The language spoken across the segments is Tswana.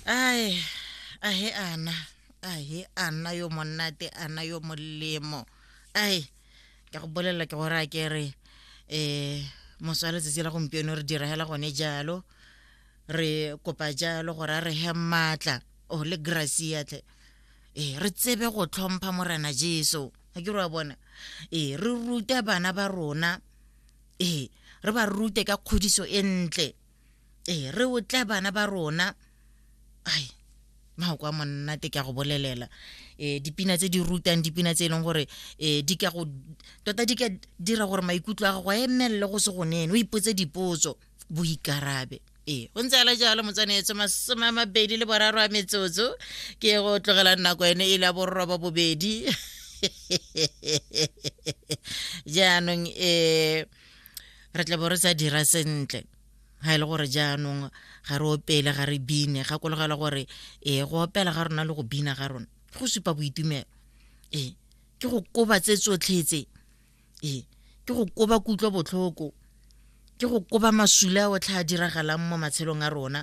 ai a he ana a he ana yo monate ana yo molemo ai ka go bolelela ke gore a ke re um moso wa letsatsi la gompieno re diragela gone jalo re kopa jalo gore a re he maatla o le gracia tle ee re tsebe go tlhompha morena jesu ga ke re wa bona ee re rute bana ba rona ee re ba rute ka kgodiso e ntle ee re otla bana ba rona ai mao kwa monnate ke a go bolelela um dipina tse di rutang dipina tse e leng gore um di ka go tota di ka dira gore maikutlo a gago a emelele go se go nene o ipotse dipotso boikarabe ee go ntse ala jalo motsanetse masome a mabedi le boraro a metsotso ke go tlogelang nako ene e le ya borroba bobedi jaanong um re tla bo re sa dira sentle ga e le gore jaanong ga re opele ga re bine gakologela gore ee go opela ga rona le go bina ga rona go supa boitumelo ee ke go koba tse tsotlhetse ee ke go koba kutlwa botlhoko ke go koba masula a otlhe a diragalang mo matshelong a rona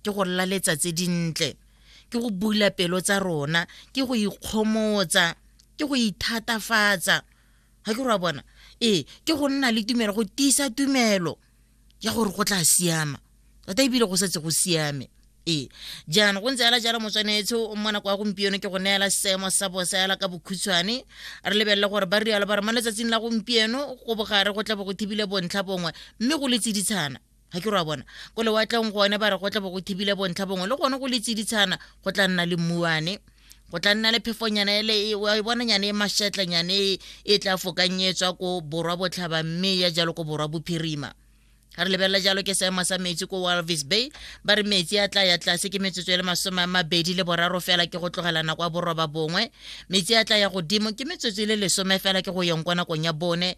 ke go laletsa tse dintle ke go bula pelo tsa rona ke go ikgomotsa ke go ithatafatsa ga ke re wa bona ee ke go nna le tumelo go tiisa tumelo ya gore go tla siama tota ebile go setse go siame ee jaana go ntse ala jalo motswanetse o mo nako ya gompieno ke go neela seemo sa bosa yala ka bokhutshwane re lebelele gore ba rialo ba re mo letsatsing la gompieno go bogare go tla bo go thibile bontlha bongwe mme go le tsiditshana ga ke re wa bona ko lewatleng gone ba re go tla bo go thibile bontlha bongwe le gone go le tsiditshana go tla nna le mmuane go tla nna le phefonyana ele e, wa e bonanyane e mashetlanyane e, e tla fokanyetswa ko borwa botlhaba mme ya jalo ko borwa bophirima ga re lebelela jalo ke seemo sa metsi ko walvis bay ba re metsi a tla ya tlase ke metsotso e le masome a mabedi le boraro fela ke go tlogela nako ya boroba bongwe metsi a tla ya godimo ke metsotso e le lesome fela ke go yeng kwa nakong ya bone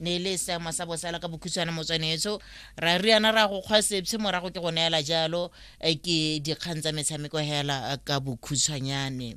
ne le seemo sa bosala ka bokhutshwane motswanetso ra riana ra go kgwa sepshe morago ke go neela jalo eh, ke dikgang tsa metshameko hela eh, ka bokhutshwanyane